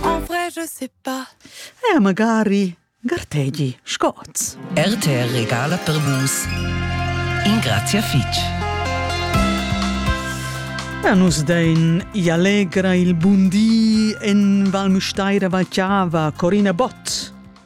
En vrai, je sais pas. Eh, magari. Gartegi, scots. RTR regala per vus. In grazia fitch. A nus dein i allegra il bundi en Val Müstaira Valchiava, Corina Bott.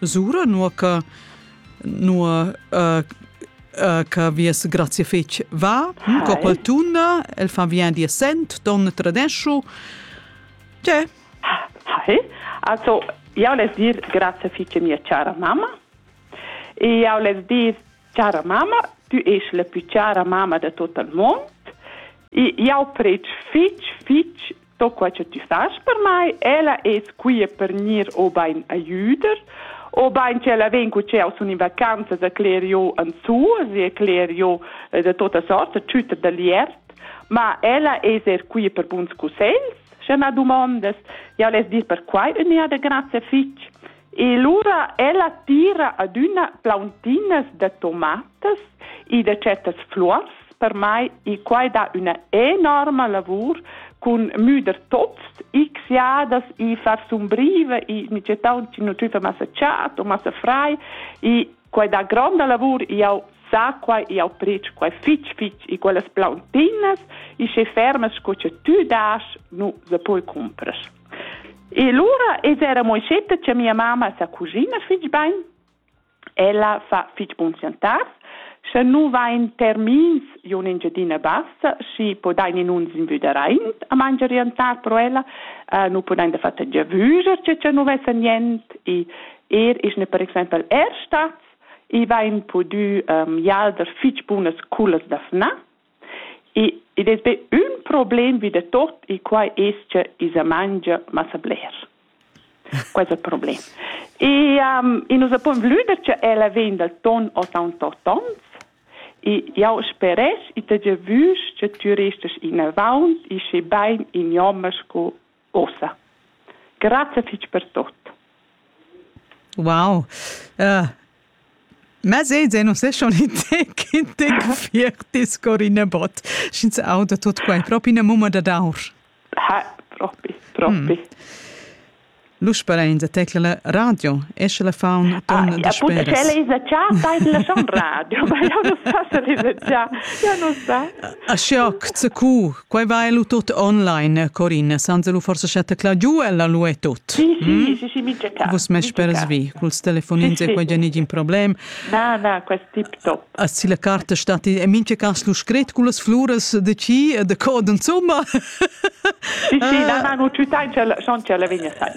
Sura nua che nua uh, uh, che vies grazie fetg va, hm, coppel tuna, el fa vien di sent, don tradescio. C'è? Hi. Also, io les dir grazie fetg mia cara mamma. E io les dir cara mamma, tu ești la più cara mamma de tot il mond. E io preg fetg, fetg sto quai che ti fas per mai, ella es quia per gnir obain a jüder, obain ch'ella vegn cu ch'eau sun in vacanzas a cler jo an suas e a cler jo eh, da tota sorta tschütter da liert, ma ella es er quia per buns cussegls, sche ma dumondas, jau less dir perquai ün'eada grazie fich. E lura ella tira adüna plauntinas da tomatas e da chattas fluors per mai e quai dà üna enorma lavur cun müder tots x jadas e far sumbriva e mi tgè taunt chi nu tüfa massa chad o massa frai e Quai da gronda lavur jau sa quai jau pretsch quai fitg fitg e quellas plauntinas e sche fermas sco che tu das nu se poi cumpras. E lura es era Moichetta che mia mamma sa cucina fitg bain. Ella fa fitg bun chantar. Sche nu vain termins io in Engiadina Bassa, schi podain in uns invüderaint a mangiar e antar pro ella, uh, nu podain da fatta giavüger che cha nu vessa niente e Er ich ne per exempel er stat, i vain pudü um, jalder fich bunas culas da fna. E id es be ün problem vi da tot e quai es cha i sa mangia massa bler. Questo è il problema. E um, e nos abbiamo voluto che ella vegna dal ton o tan to tons. E io speresch e te già vus che tu restes in avant e sche bain in jommers co ussa. Grazia fitg per tot. Wow. Uh, Ma sei se non se schon te che te fierti scorine bot. Schins auda tot quai propi na mumma da daur. Ha, propi, propi. Mm. L'usperain da tecla la radio, esce la faun ton ah, da speras. Ja, puta, c'è già, dai la schon radio, ma io non sa se lisa già, io non sa. A shock, zu cu, Quei va lu tut online, Corinne, senza lu forse scetta cla giu, ella lu è tut. Sì, sì, mm? sì, sì, mincha cas. Vus me speras vi, culs telefonins sì, e quei nigin problem. Na, na, quest tip top. A si la carta stat e mincha cas lu scret cullas fluras de ci e de cod insomma. Sì, sì, ah. na, na, nu ciutai, ch'ella, schon, ch'ella vegna sai.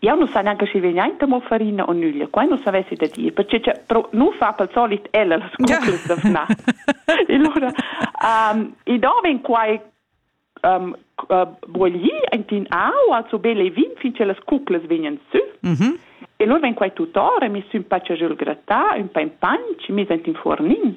jau nu sa neanche schi vegnainta mo farina o nüglia, quai nu savessi da dir, perche cha pro nu fa pel solit ella las cuclas da fnar. allura, um, i do ven quai um, uh, boglì aint in aua, so bel e vin, fin che las cuclas vegnan sü. Mm -hmm. E lur ven quai tutor e mi sün paccia giul grattà, ün pa in panch, mis aint in fornin.